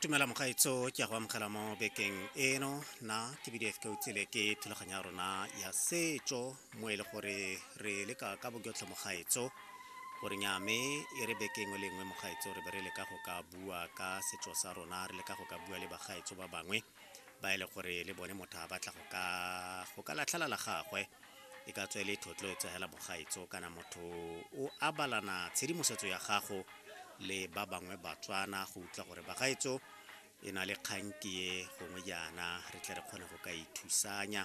tumela mogaetso ke ya go amogela mo bekeng eno na ke bdf ke utsile ke thulaganyo ya rona ya setso mo e le gore re leka ka boketlho mogaetso gore nyame e re bekeng o lengwe mogaetso re be re leka go ka bua ka setso sa rona re leka go ka bua le bagaetso ba bangwe ba e le gore le bone motho a batla go ka go ka latlhela la gagwe e ka tswele thotloetso hela bogaetso kana motho o abalana tshedimosetso ya gago le ba bangwe batswana go utlwa gore bagaetso e na le kgankie gongwe jaana re tle re kgone go ka ithusanya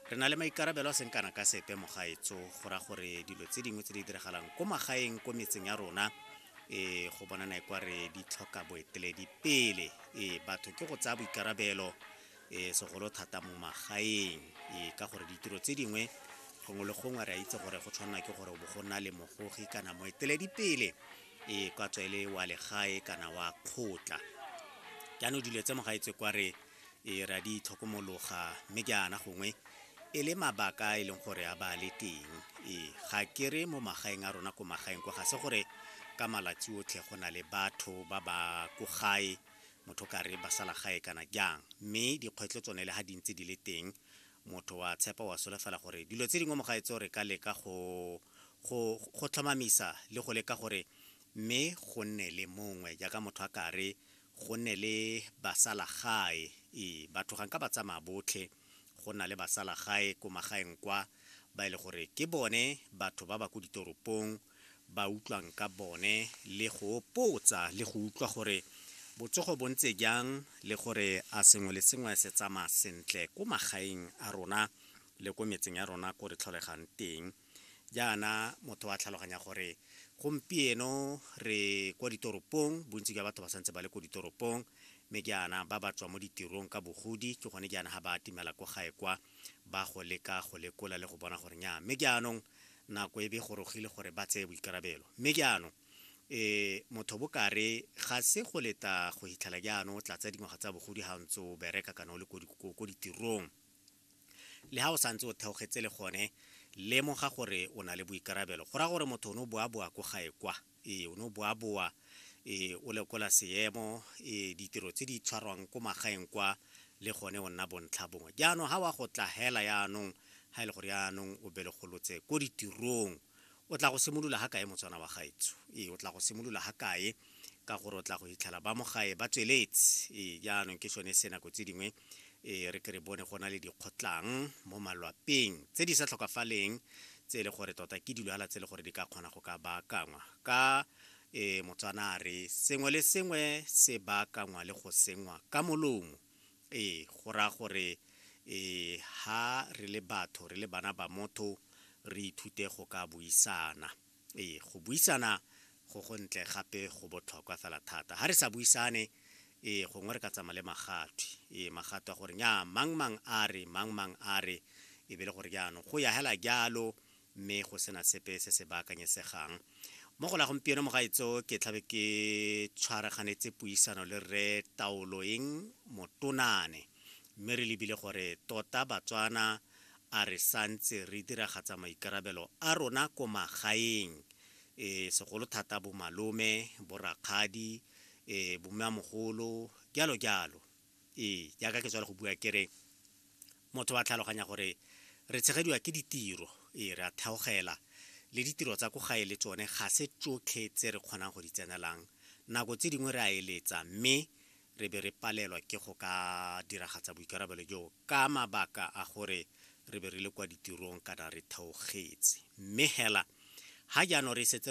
re na le maikarabelo a seng kana ka sepe mogaetso go ra gore dilo tse dingwe tse di diragalang ko magaeng ko metseng ya rona ee go bonana e kwa re di tlhoka boeteledi pele ee batho ke go tsaya boikarabelo ee segolo thata mo magaeng ee ka gore ditiro tse dingwe gongwe le gongwe re a itse gore go tshwanela ke gore bo go nna le mogogi kana moeteledi pele ee kwa tswa e le wa legae kana wa kgotla jaanong dilo tse mogaetswe kwa re Ee, re a di itlhokomologa, mme jaana gongwe e le mabaka a e leng gore a ba le teng. Ee, ga ke re mo magaeng a rona ko magaeng kwa ga se gore ka malatsi otlhe go na le batho ba ba ko gae motho ka re ba sala gae kana jang, mme dikgwetlho tsone le ga di ntse di le teng motho wa tshepa wa solofela gore dilo tse dingwe mo gae tseo re ka leka go go go tlhomamisa le go leka gore mme go nne le mongwe jaaka motho a ka re go ne le basalagae ee batho ga nka ba tsamaya botlhe go na le basalagae ko magaeng kwa ba e le gore ke bone batho ba ba ko ditoropong ba utlwang ka bone le go potsa le go utlwa gore botsogo bo ntse jang le gore a sengwe le sengwe se tsamaya sentle ko magaeng a rona le ko metseng ya rona ko re tlholegang teng jaana motho wa tlhaloganya gore gompieno re kwa ditoropong bontsi jwa batho ba santse ba le ko ditoropong mme jaana ba ba tswa mo ditirong ka bogodi ke gone jaana ga ba atimela ko gae kwa ba go leka go lekola le go bona gore nya mme jaanong nako e be gorogile gore ba tseye boikarabelo mme jaanong e motho bokare ga se go leta go hitlhela jaanong o tlatsa dingwaga tsa bogodi ga ntse o bereka kana o le ko ditirong Le ha o santse o theogetse le gone, lemoga gore o na le boikarabelo. Go raya gore motho o ne o boaboa ko gae kwa. Ee, o ne o boaboa. Ee, o lekola seemo, ee, ditiro tse di tshwarwang ko magaeng kwa, le gone o nna bontlha bongwe. Jaanong, ha wa go tla hela yaanong, ha e le gore yaanong o belegolotse ko ditirong, o tla go simolola ga kae motswana wa gaetsho ee o tla go simolola ga kae ka gore o tla go fitlhela ba mo gae ba tsweletse ee jaanong ke sone se nako tse dingwe ee re ke re bone go na le dikgotlang mo malwapeng tse di sa tlhokafaleng tse e le gore tota ke dilwala tse e le gore di ka kgona go ka baakangwa ka ee motswana a re sengwe le sengwe se baakangwa le go sengwa ka molomo Ee, go raya gore ha re le batho, re le bana ba motho, re ithute go ka buisana. Ee, go buisana go go ntle gape go botlhokwa fela thata. Ha re sa buisane, ee, gongwe re ka tsamaya le magatwe. Ee, magatwe a gore nnyaa, mang-mang a re, mang-mang a re, e be le gore jaanong go ya hela jalo, mme go sena sepe se se baakanyesegang mo go la gompieno mogaetso ke tlhabe ke tshwaraganetse puisano le rre taoloeng motonane mme re lebile gore tota batswana a re santse re diragatsa maikarabelo a rona ko magaeng e segolo thata bomalome borakgadi e bommeamogolo jalo jalo ee jaaka ke tswale go bua kere Motho wa tlhaloganya gore re tshegediwa ke ditiro, ee, re a theogela, le ditiro tsa ko gae le tsone ga se tsotlhe tse re kgonang go di tsenelang. Nako tse dingwe re a eletsa mme re be re palelwa ke go ka diragatsa boikarabelo joo ka mabaka a gore re be re le kwa ditirong kana re theogetse. Mme hela, ga jaanong re setse re